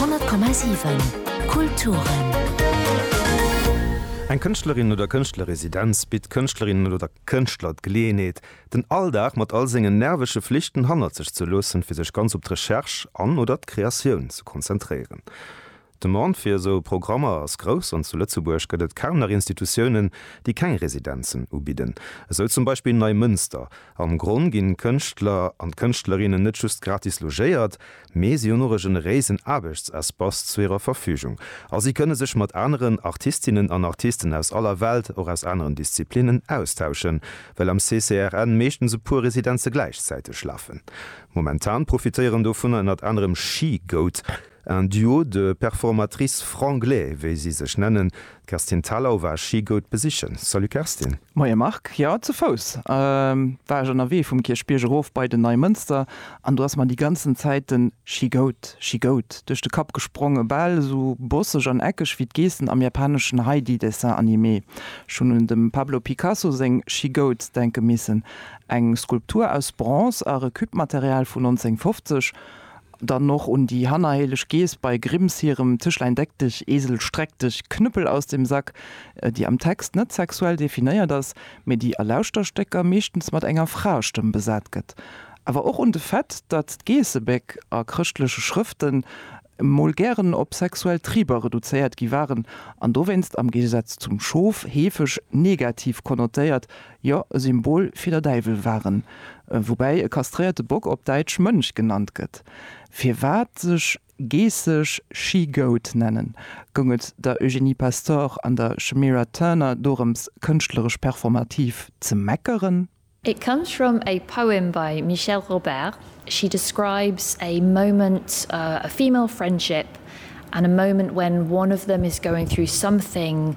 100,7 Kulturen. Eng Kënschtlerin oder Kënschtlerresidenz bitt Kënschtlerinnen oder Kënschtler d'Geleeënheet, den Alldag mat all sengen nervege Flichten hannert sech ze loossen, fir sech ganz op d'Recherche an oder d'Kreatioun ze konzentréieren. D'Demande fir esou Programmer ass grouss an zu Lëtzebuerg gëtt et kaum nach Institutiounen, déi keng Residenzen ubidden, esou zum Beispill Neimënster. Am Gronn ginn d'Kënschtler an d'Kënschtlerinnen net just gratis logéiert, mee si hunn och e generéisen Aarbechtsespace zu hirer Verfügung a si kënne sech mat aneren Artistinnen an Artisten aus aller Welt, och aus aneren Disziplinnen, austauschen, well am CCRN meeschtens e puer Residenze gläichzäiteg lafen. Momentan profitéieren dovunner ënnert anerem She Goat. Un duo de performatrices franglais, wéi si sech nennen. D'Kerstin Thalau war Schigout besichen. Salut Kerstin! Moie Marc, jo zu Fouss war ech ënnerwee vum Kierchbierg erof bei den Neimënster an do ass mer déi ganzen Zäit den Schigout, Schigout duerch de Kapp gesprongen, bal esou bosseg an eckeg wéi d'Geessen am japaneschen Heidi Dessin Animé. Ech hunn un dem Pablo Picasso seng Schigout denke missen, eng Skulptur aus Bronze a Recup-Material vun 1950. Dann och un déi hannerhéileg Geess bei Grimms hirem Tischlein deck dich, Esel streck dich, Knüppel aus dem Sack, déi am Text net sexuell definéiert ass, mee déi a Lauschterstécker meeschtens mat enger Fraestëmm besat gëtt. Awer och un de Fait, datt d'Geessebéck a chrëschtleche Schrëften mol gären op sexuell Triber reduzéiert gi waren an dowéinst, am Géigesaz zum Schof, heefeg negativ konnotéiert Jo, e Symbol fir der Däiwel waren, woubäi e kastréierte Bock op Däitsch Mönch genannt gëtt. Firwat sech Geesseg She-Goat nennen? Goung et der Eugénie Pastor an der Shemira Turner dorëms kënschtleresch performativ ze meckeren? It comes from a poem by Michèle Robert, she describes a moment a female friendship and a moment when one of them is going through something,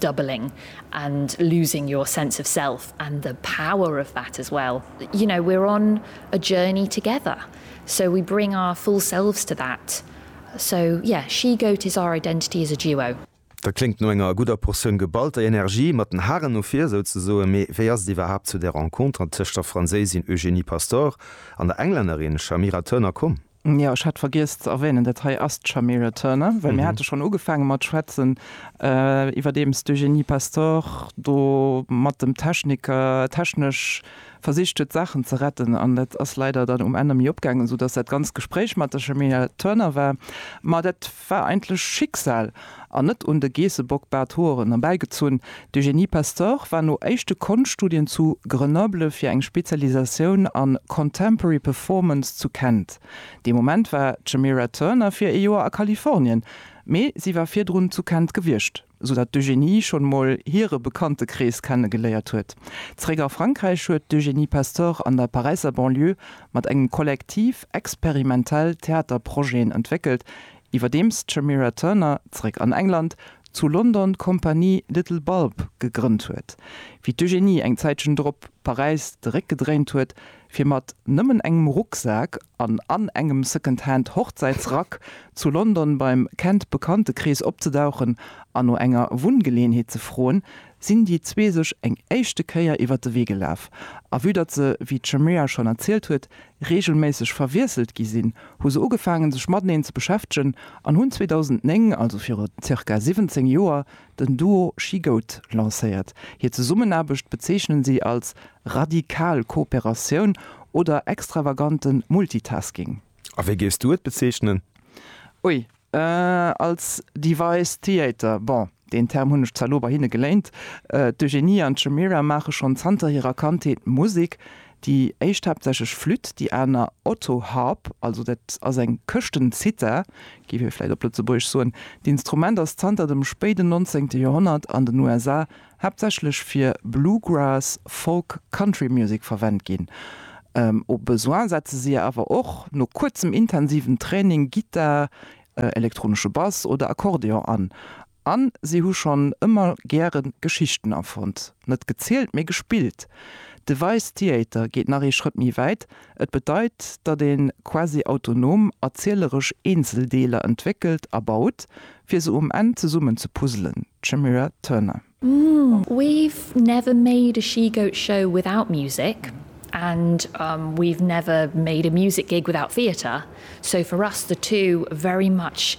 doubling and losing your sense of self and the power of that as well. You know, we're on a journey together, so we bring our full selves to that. So, yeah, She-Goat is our identity as a duo. Dat kléngt no enger gudder Portioun geballter Energie, mat den Haren no vir souzesoen. Mee wéi ass et iwwerhaapt zu där Renconter tëscht der Franséisin Eugénie Pastor an der Englännerin Shamira Turner komm? Jo, ech hat vergiess ze erwänen, dat hei ass d'Shamira Turner, well mir hate schonn ugefaange mat schwätzen iwwerdeems d'Eugénie Pastor do mat dem Techniker technesch versicht huet, d'Saachen ze retten. An dat ass leider dann um Enn emmi opgaangen, esou datt dat ganzt Gespréich mat der Shamira Turner war. Ma dat 't war eigentlech Schicksal an net un de Geessebock-Barthoeren erbäigezunn. D'Eugénie Pastor war no éischte Konschtstudien zu Grenoble fir eng Spezialisatioun a Contemporary Performance zu Kent. Dee Moment war d'Shemira Turner fir ee Joer a Kalifornien, mee si war virdrun zu Kent gewiescht. esou datt d'Eugénie schonn emol hire Bekanntekrees kennegeléiert huet. Zeréck a Frankräich huet d'Eugénie Pastor an der Paräisser Banlieue mat engem Kollektiv experimentell Theaterprojeten entwéckelt, iwwerdeems d'Shamira Turner, zeréck an England, zu London d'Kompanie Little Bulb gegrënnt huet. Wéi d'Eugénie eng Zäitchen drop Paräis de Réck gedréint huet, fir mat nëmmen engem Rucksak an an engem Secondhand Hochzäitsrack zu London beim Kent Bekanntekrees opzedauchen an no enger Wunngeleenheet ze froen, sinn déi zwee sech eng éischte Kéier iwwer de Wee gelaf. A vue datt se, wéi d'Shamira schonn erzielt huet, reegelméisseg verwiesselt gi sinn, hu se ugefaangen sech mateneen ze beschäftegen an hunn 2009, also viru zirka 17 Joer, Den Duo Schigoud lancéiert hir Zesummenaarbecht, bezeechnen si als radikal Kooperatioun oder extravaganten Multitasking. A wéi géifs du et bezeechnen? Ui, als Device Theater, bon, deen Term hunn ech zwar elo bei hinne geléint. D'Eugénie an d'Shemira maache schonn zanter hirer Kandheet Musek, Déi éischt haaptsächlech Flütt, déi aner Otto-Harp, also dat ass eng Këschtenzither, géif ee vläit op Lëtzebuergesch soen. D'Instrument ass zanter dem spéiden 19. Joerhonnert an den USA haaptsächlech fir Bluegrass, Folk, Country Music verwent ginn. Au besoin setze si awer och no kuerzem intensiven Training Gittar, elektronesche Bass oder Akkordeon an. An si hu schonn ëmmer gäre Geschichten erfonnt, net gezielt, mee gespillt. De Vice Theater geet nach ee Schrëtt méi wäit, et bedeit, datt ee quasi autonom erzieleresch Eenzeldeeler entwéckelt a baut, fir se um Enn zesummen ze puzzelen. D'Shemira Turner. We've never made a she-goat show without music and we've never made a music gig without theater, so for us the two very much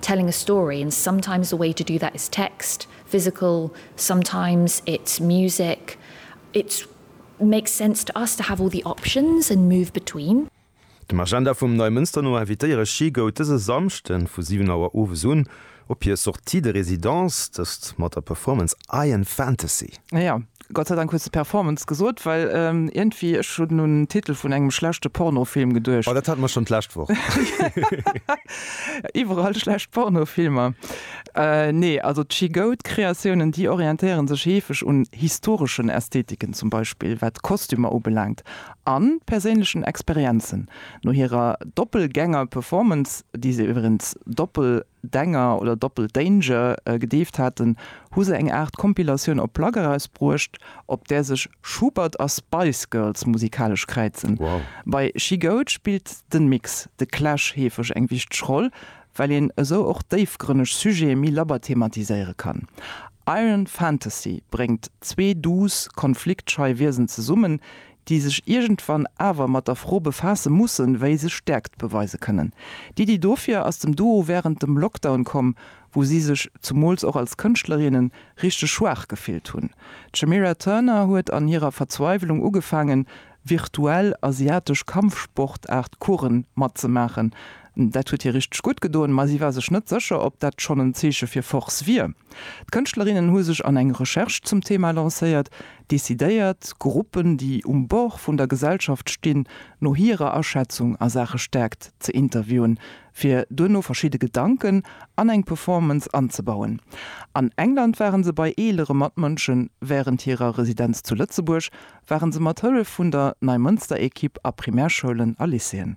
Telling a story and sometimes the way to do that is text, physical, sometimes it's music, it makes sense to us to have all the options and move between. Dem Agenda vum Neimënster no invitéiere ech She Goat dëse Samschden vu 7 Auer owes un op hir Sortie de résidence, dëst mat der Performance Iron Fantasy. Jo, Gott sei Dank hues de Performance gesot, well ierndwéi, ech hunn un en Titel vun engem schlechte Pornofilm geduecht. Oh, dat hate mer schonn d'lescht Woch. Iwwerall schlecht Pornofilmer. Nee, also d'Shigoud-Kreatiounen, déi orientéiere sech heefeg un historeschen Ästhetiken, zum Beispill wat d'Kostümer ubelaangt, a perséinlechen Experienzen. No hirer Doppelgänger-Performance, déi se iwwerens doppel. Danger oder Doppel Danger gedeeft haten, hu se eng Aart Kompilatioun op Plak erausbruecht, op där sech Schubert a Spice Girls musikalesch kräizen. Bei She Goat spillt de Mix The Clash heefeg eng wichteg Roll, well een esou och déifgrënneg Sujete méi labber thematiséiere kann. Iron Fantasy bréngt zwee duuss, konfliktschei Wiesen zesummen, déi sech iergendwann awer mat der Fro befaasse mussen, wéi se Stäerkt beweise kënnen. D'Iddi dofir ass dem Duo wärend dem Lockdown komm, wou si sech, zumools och als Kënschtlerinnen, richteg schwaach gefillt hunn. D'Shemira Turner huet an hirer Verzweiwelung ugefaangen, virtuell asiatesch Kampfsportaart-Coursen matzemaachen. Dat huet hir richteg gutt gedoen, ma si war sech net sécher, ob dat schonn en Zeeche fir Force wier. D'Kënschtlerinnen hu sech an eng Recherche zum Thema lancéiert, Decidéiert Gruppen, déi um Bord vun der Gesellschaft stinn, no hirer Aschätzung a Saache Stäerkt ze interviewen, fir duerno verschidde Gedanken an eng Performance anzebauen. An England ware se bei eelere Matmënschen, wärend hirer Residenz zu Lëtzebuerg ware se mat Hëllef vun der Neimënster-Ekipp a Primärschoulen a Lycéeën.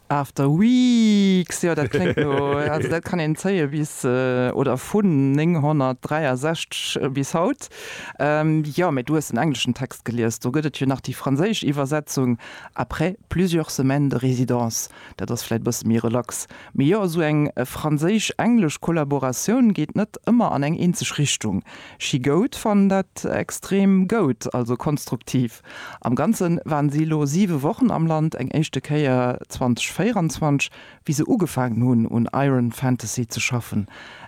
After Weeks, jo dat kléngt no, also dat kann een zéie bis, oder vun 963 bis haut. Jo, mee du hues den engleschen Text gelies, do gëtt et jo nach déi franséisch Iwwersetzung, après plusieurs semaines de résidence. Dat ass vläit e bësse méi relax. Mee jo, esou eng franséisch-englesch Kollaboratioun geet net ëmmer an eng eenzeg Richtung. She goat fannen dat extrem goud, also konstruktiv. Am Ganze waren si elo 7 Wochen am Land, eng éischte Kéier 2024, wéi se ugefaangen hunn un Iron Fantasy ze schaffen.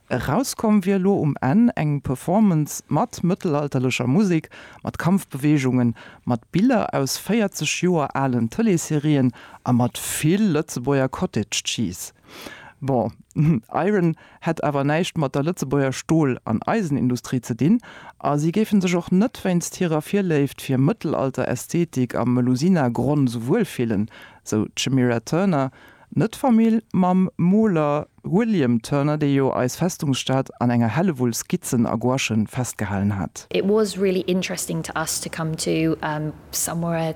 Erauskomm wier elo um Enn eng Performance mat mëttelalterlecher Musek, mat Kampfbeweegungen, mat Biller aus 40 Joer alen Tëleesserien a mat vill Lëtzebuerger Cottage Cheese. Bon, Iron. hätt awer näischt mat der Lëtzebuerger Stol an Eisenindustrie ze dinn a si géife sech och net wéinst hirer Virléift fir Mëttelalter-Ästhetik a Melusina-Grunz wuelfillen, sou d'Shemira Turner, net Famill mam Moler William Turner, dee jo eis Festungsstad an enger Hellewull Skizzen a Gouachen festgehalen hat. It was really interesting to us to come to somewhere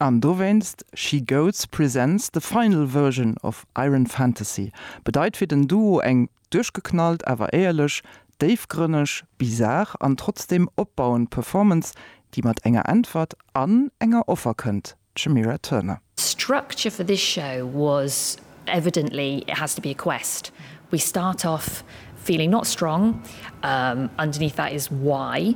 An dowéinst She Goats presents the final version of Iron Fantasy bedeit fir den Duo eng duerchgeknallt awer éierlech, déifgrënneg, bizar an trotzdeem opbauend Performance, déi mat enger Äntwert an enger Offer kënnt, D'Shemira Turner. Structure for this show was Evidently it has to be a quest. We start off feeling not strong, umm underneath that is why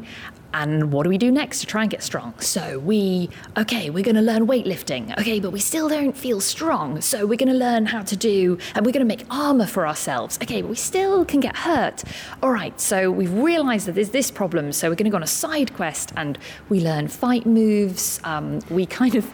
and what do we do next to try and get strong? So we ok we're gonna learn weightlifting ok but we still don't feel strong so we're gonna learn how to do and we're gonna make armour for ourselves ok but we still can get hurt alright so we've realised that there's this problem so we're gonna go on a side quest and we learn fight moves umm we kind of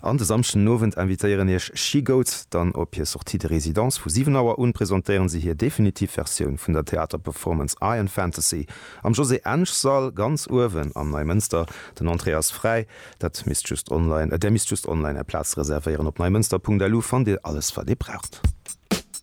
An de Samschden Owend invitéieren iech She Goats dann op hir Sortie de résidence. Vu 7 Auer un presentéieren si hir definitiv Versioun vun der Theaterperformance Iron Fantasy am Josée Ensch Sall ganz uewen am Neimënster. Den Entrée ass fräi, dat misst just online, der misst just online är Plaz reservéieren. Op neimënster.lu fannt dir alles wat dir braucht.